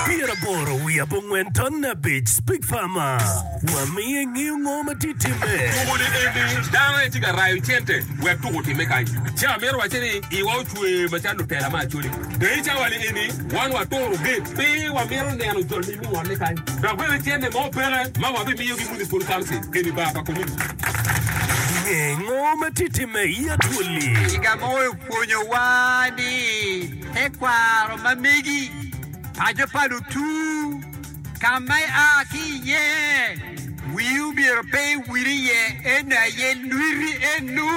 Pyeraboro wiye abongwen ton abic Speak Farmer wa miyo ingeyo ngo ma tye timme. Tuko ni eni dano aye tye ka rayo cente wek tuko otimme kany. Ce amito wacce ni iwa ocwe macalo lutela me Acholi. Dong i cawa ni eni wan waturo gate pi wamito neno jol ni mingonne kany dok bene cente mo peke ma wabimiyo ki Municipal Council eni bar pa Community. Inge ngo ma tye timme i Acholi? Kiga mogo opwonyowa ni. Tekwaro ma megi, paco pa lutur, ka ma ia ki iye, wii omyero pe iwil iye, en aye lwiti eno.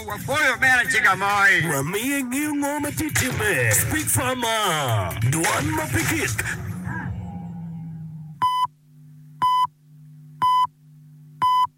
Wapoyo me lacega moi. Wamiye ngeyo ngo ma tye timme. Speak farmer, dwan ma pe kik.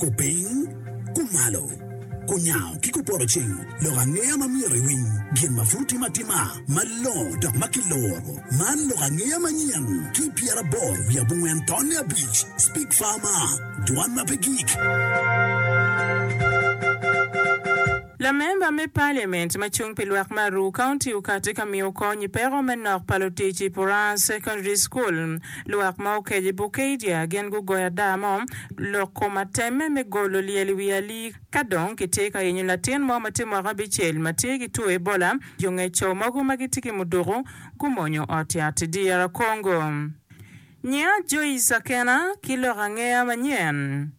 Kupiny, kumalo, kunyango ki kupoto cing lok angeya ma myero iwiny, gin ma pud timo atima malongo dok ma kiluro. Man lok angeya manyen ki i pyeraboro wiye abongwen tonne abic, Speak Farmer, Dwan ma pe gik. Lamemba me Paliament ma cung pi lwak me Aruu County okati ka miyo kony i peko me nok pa lutic i Puraas Secondary School. Lwak ma okeco i Bukedia gin gugoyo ada mo lok kom atemme me golo lyel i wi alii ka dong kitye ka yenyo latin mo ma tye mwaka abicel ma tye ki two Ebola. Jo ngec co mogo ma gitye ki muduku gumonyo ot yat i dyera Congo. Nyinga Joyce Akena ki lok angeya manyen.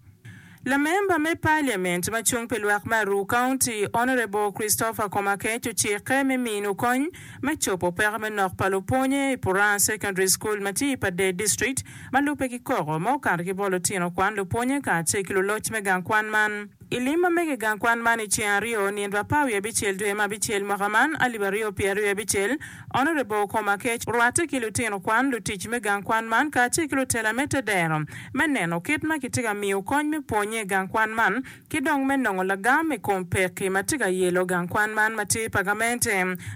Lamemba me Parliament ma cung pi lwak me Aruu County Honourable Christopher Komakech ocikke me minu kony me cobo peko me nok pa lupwonye i Puraa Secondary School ma tye i Padee District ma lubbe ki koko ma okato ki bot lutino kwan lupwonye kacel ki luloc me gang kwan man. I lim ma mege i gang kwan man i ceng aryo nyen dwe apar wiye abicel dwe ma abicel mwaka man alip aryo pye aryo abicel, Honourable Komakech orwatte ki lutino kwan, lutic me gang kwan man kacel ki lutela me te dero me neno kit ma kitye ka miyo kony me pwonye i gang kwan man ki dong me nongo lagam i kom pekki ma tye ka yelo gang kwan man ma tye pa gamente.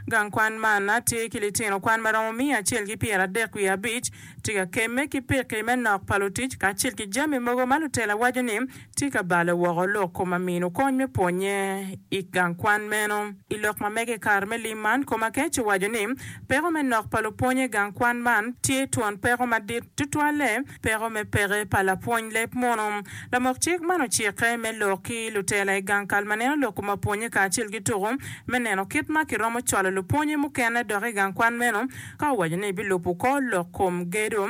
Gang kwan man na tye ki litino kwan ma romo miya acel ki pyera adek wiye abic tye ka kemme ki pekki me nok pa lutic kacel ki jami mogo ma lutela waco ni Tika balo woko lok koma mino kony me pwonye i gang kwan meno? I lok ma mege i kare me lim man, koma kec owaco ni, Peko me nok pa lupwony i gang kwan man tye twon peko madit, tutwalle peko me peke pa lapwony leb munu. Lamok cik man ocikke me lok ki lutela i gang kal ma neno lok koma pwonye kacel ki tuku me neno kit ma kiromo cwalo lupwonye mukene dok i gang kwan meno ka owaco ni bilubo kor lok kom gedo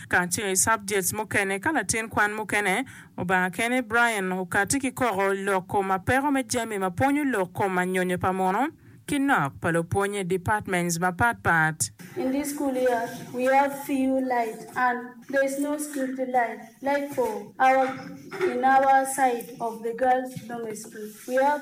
kacel i subjects mukene ka latin kwan mukene obanga kene Brian okati ki koko lok kom apeko me jami ma pwonyo lok kom anyonyo pa muno ki nok pa lupwony i departments mapat pat. In this school year we have few light and there is no security light like for our in our side of the girls dormitory school we have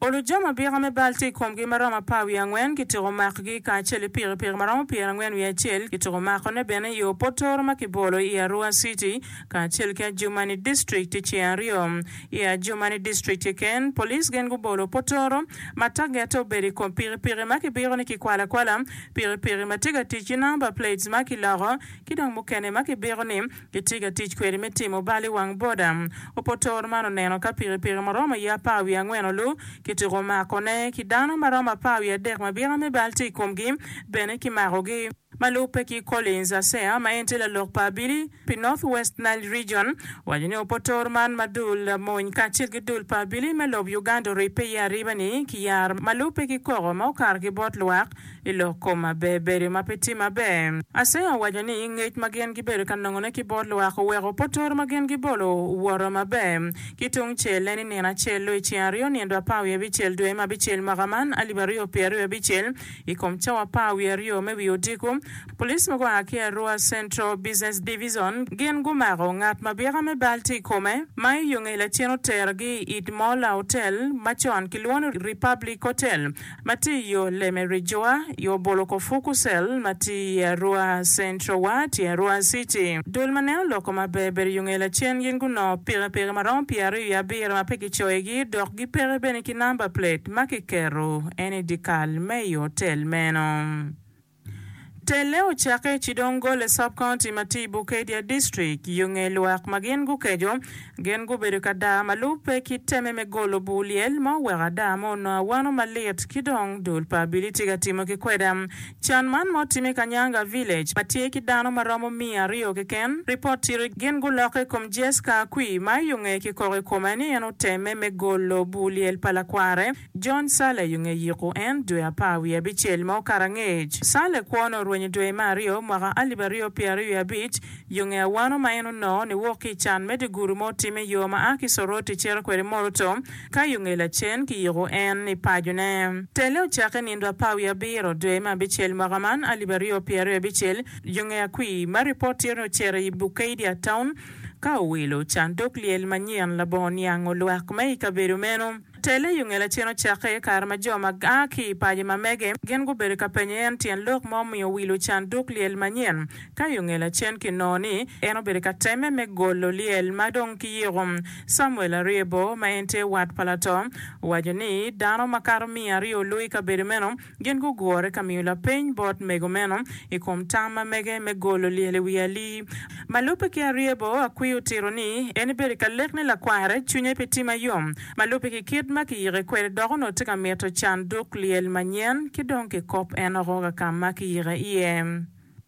Olu jo ma bika me bal tye i komgi ma romo apar wiye angwen kitiko makgi, kacel i pikipiki ma romo pyera angwen wiye acel kitiko makone bene i yo potoro ma kibolo i Arua City kacel ki Adjumani District i ceng aryo. I Adjumani District keken, police gin gubolo potoro ma targette obedo i kom pikipiki ma kibiko ni kikwalo akwala, pikipiki ma tye ka tic ki number plates ma kiloko ki dong mukene ma kibiko ni Gitye ka tic kwede me timo bal i wang boda. Opotor man oneno ka pikipiki ma romo ye apar wiye angwen olu kituko makone, ki dano ma romo apar wiye adek ma bika me bal tye i komgi bene kimakogi. Ma lubbe ki Collins Asea ma en tye lalok pa abili pi North West Nile Region owaco ni opotor man ma dul mony kacel ki dul pa abili me lob Uganda oribbe iye ariba ni kiyar ma lubbe ki koko ma okato ki bot lwak Ilok koma ber bedo ma pe tye maber. Asenga owaco ni ngec ma gin gibedo ka nongone ki bot lwak oweko potoro ma gin gibolo owoto maber. Ki tung cel-le ni nino acel-lu i ceng aryo nyen dwe apar wiye abicel dwe me abicel mwaka man alip aryo pye aryo abicel i kom cawa apar wiye aryo me wi odiko, police ma gua ki Arua Central Business Division gin gumako ngat ma byeka me bal tye i kome ma i yo ngeye lacen otergi i it mo laotel ma con kilwongo ni Republic Hotel ma tye i yo Leme Ridgeway, yo bolo kor Fuku Cell ma tye i Arua Central wa tye Arua City. Dul ma neno loko maber ber yo nge lacen gin gunongo pikipiki ma romo pyeraryo i abiro ma pe kicoyogi dok gipeke bene ki namba plate ma kiketo ene i dikal me i otel meno. Telle ocakke i Chidongole Sub-County ma tye i Bukedya District yo nge lwak ma gin gukeco. Gin gubedo ka daa ma lubbe ki teme me golo bur lyel ma oweko ada ma onongo awano malit ki dong dul pa abili tye ka timme ki kweda. Can man ma otimme i Kanyanga Village ma tye ki dano ma romo miya aryo keken, ripot tito gin gulokke i kom Jesca Akwi ma i onge ki koko i kome ni en otemme me golo bur lyel pa lakware. John Saleh yunge yiko en dwe apar wiye abicel mo karangec. Saleh kwone orwenyo dwe me aryo mwaka alip aryo pyera aryo wiye abic, yunge awano ma en onongo ni wok ki i can me diguru ma otime yo ma a ki Soroti cito kwede Moroto ka yunge lacen ki yiko en ni pajo ne. Telle ocakke nindo apar wiye abiro dwe me abicel mwaka man alip aryo pyera aryo abicel yunge akwi ma ripot tye ni ocito i Bukeidia Town ka owilo can dog lyel manyen labongo niango lwak me i kabedo meno. Tele i ongela cen ocakke, kare ma jo ma aa ki i paco ma mege gin gubedo ka penyo en tyen lok ma omiyo owilo can duk lyel manyen. Ka i ongela cen kinongo ni en obedo ka temme me golo lyel ma dong kiyiko. Samuel Ariebo, ma en tye wat pa lato, owaco ni, Dano makato miya aryo olu i kabedo meno, Gin gugure ka miyo lapeny bot mego meno i kom tam ma mege me golo lyel i wi Ali. Ma lubbe ki Aryebo, Akwi otito ni en ibedo ka lek ni lakware cwinye pe tye ma yom ma lubbe ki kit ma kiyike kwede dok onongo tye ka mito can duk lyel manyen ki dong kikop en oko ka ka ma kiyike iye.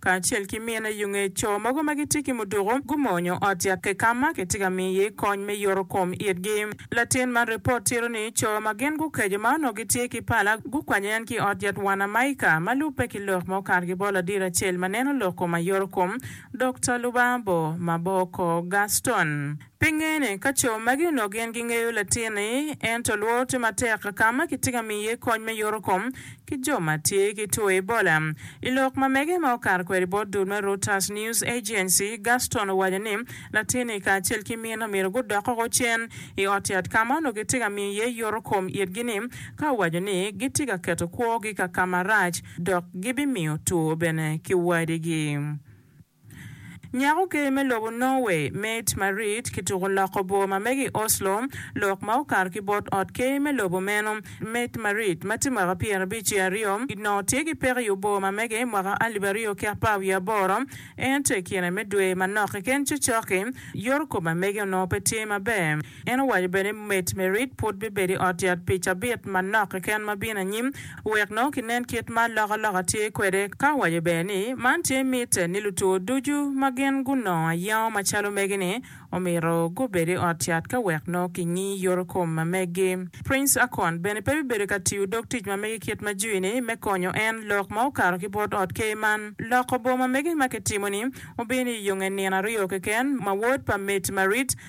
kacel ki mine yo nge co mogo ma gitye ki muduku gumonyo ot yakke ka ma kitye ka miyo iye kony me yoto kom itgi. Latin man ripot tito ni co ma gin gukeco ma onongo gitye ki pala gukwanyo en ki i ot yat Wanamaika ma lubbe ki lok ma okato ki bot ladiro acel ma neno lok kom ayoto kom, Dokta Lubabo Maboko Gaston. Pinge ni ka co magi onongo gin gingeyo latin-ni, ento lworo tye matek ka ma kitye ka miyo iye kony me yoto kom ki jo ma tye ki two Ebola. I lok ma mege ma okato kwede bot dul me Reuters News Agency, Gaston owaco ni latin-ni kacel ki mine omyero gudok woko cen i ot yat ka ma onongo kitye ka miyo iye yoto kom itgi-ni ka owaco ni gitye ka keto kwogi ka ka marac dok gibimiyo two bene ki wadigi. Nyako ker me lobo Norway, Mette Marit, kituko loko bor ma mege i Oslo, lok ma okato ki bot ot ker me lobo meno. Mette Marit, ma tye mwaka pyerabic ki aryo, onongo tye ki peko i obor ma mege mwaka alip aryo ki apar wiye aboro, ento i kine me dwe manok keken cokcok-ki, yorokom ma mege onongo pe tye maber. En owaco bene ni Met Merritt pud bibedo i ot yat pi cabit manok keken ma bino anyim wek nongo kinen kit ma alokaloka tye kwede, ka owaco bene ni man tye mitte ni lutwo ducu ma gin gunongo ayengo macalo megi-ni omyero gubed i ot yat ka wek nongo kingi yoto kom ma megi. Prince Akon bene pe bibedo ka tiyo dog tic ma mege kit ma jui-ni me konyo en lok ma okato ki bot ot ker man. Loko boma mege ma kitimo-ni obino i yonge nino aryo keken ma wod pa Met Merritt,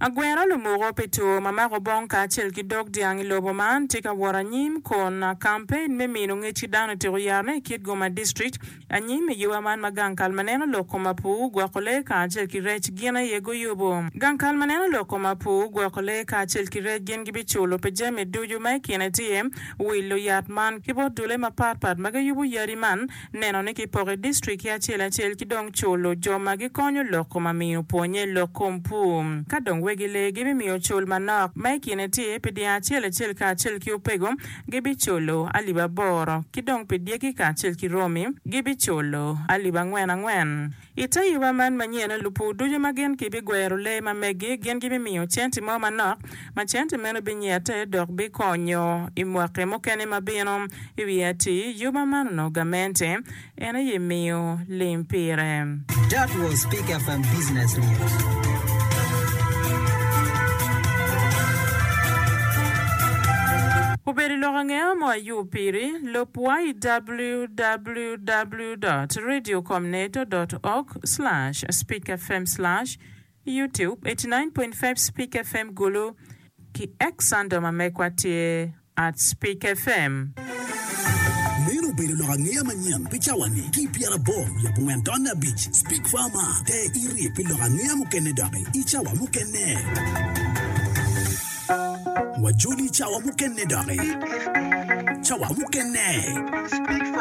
Agwero lumoko pi tur ma mako bong kacel ki dog dyang i lobo man tye ka wot anyim kun kampein me mino ngec ki dano otyeko yarone i kit Goma District anyim i yoba man ma gang kal ma neno lok kom Apuu, gwoko lee kacel ki rec gin aye guyubu. Gang kal ma neno lok kom Apuu, gwoko lee kacel ki rec gin gibiculo pi jami ducu ma i kine tye wilo yat man ki bot dule mapat pat ma giyubu yadi man, neno ni kipoko i distrikki acel acel ki dong culo jo ma gikonyo loko ma miyo pwonnye lok kom pur. Ka dong wegi lee gibimiyo cul manok ma i kine tye pi dyang acel acel kacel ki opego gibiculo alip aboro, ki dong pi dyegi kacel ki romi gibiculo alip angwen angwen. I te yuba man manyen, lupur ducu ma gin gibigwero lee ma megi gin gibimiyo centi mo manok, ma centi meno binyette dok bikonyo i mwaki mukene ma bino. I wi ati yuba man onongo gamente en aye miyo lim pire. That was Pick FM Business News. Obedo lok angeya mo ayub piri, lub YWWW. www dot radio com neto dot org slash speak fm slash youtube eighty nine point five speak fm gulu ki X Sando ma mekwa tye at speak fm. Meno obedo lok angeya manyen pi cawa-ni ki i pyerabor wiye abongwen tonne abic. Speak Farma, te iri pi lok angeya mukene doki i cawa mukene. Wajoli i cawa mukene doki. Cawa mukene.